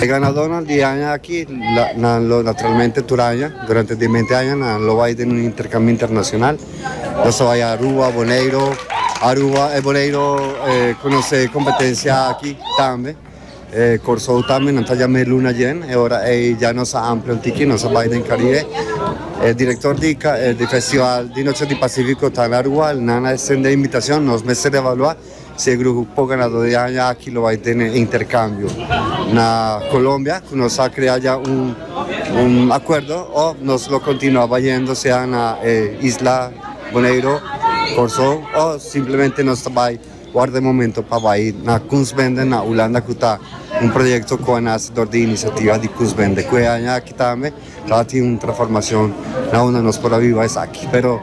E ganadónan di aña aki nan lo naturalmente tur aña durante di bente aña nan lo bai den un interkambio internashonal nan so bai Aruba Boneiro Aruba e Boneiro konosé kompetensia aki tambe e Kòrsou tambe nan ta dja mei luna djen e ora ei dja nos a amplio un tiki nos a bai den Karibe e direktor di di festival di Noche di Pasifiko ta na Aruba nan a estendé invitashon nos mester evaluá. Seguro cu poco ganador di aña aki lo bay tene intercambio na Colombia cu nos a crea ya un acuerdo of nos lo continua bayendo sea na e isla Boneiro, Corsou of simplemente nos ta bay warda e momento pa bay na Kunstbende na Hulanda cu ta un proyecto cu a nace door di iniciativa di Kunstbende cu e aña aki tambe Ta tin un transformacion na unda nos por a biba esaki. Pero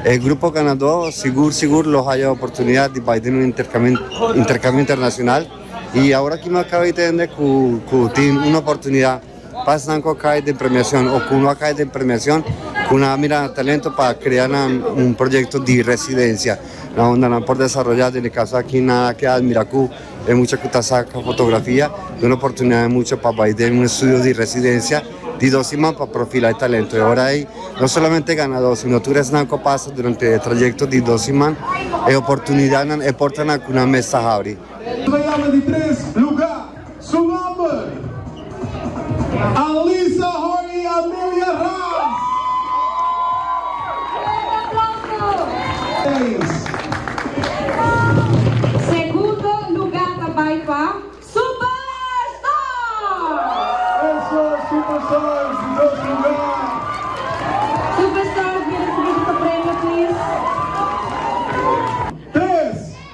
e grupo ganadó sigur sigur lo haya oportunidad di bai den un intercambio internacional y awor aki no caba hende cu tin un oportunidad pa esnan cu a cay den premiacion o cu no a cay den premiacion cu nan a mira nan talento pa crea nan un proyecto di residencia na unda nan por desaroya. Den e caso aki nan a keda admira cu. E mucha ku ta saka fotografia duna oportunidat e mucha pa bai den un estudio di residensia di dos siman pa profila e talento. E ora ei no solamente e ganadó sino tur esnan ku a pasa durante e trayekto di dos siman e oportunidatnan, e portanan ku nan mes ta habri. Alisa Hor y Amelia Ras. Segundo luga ta bay pa Superstars.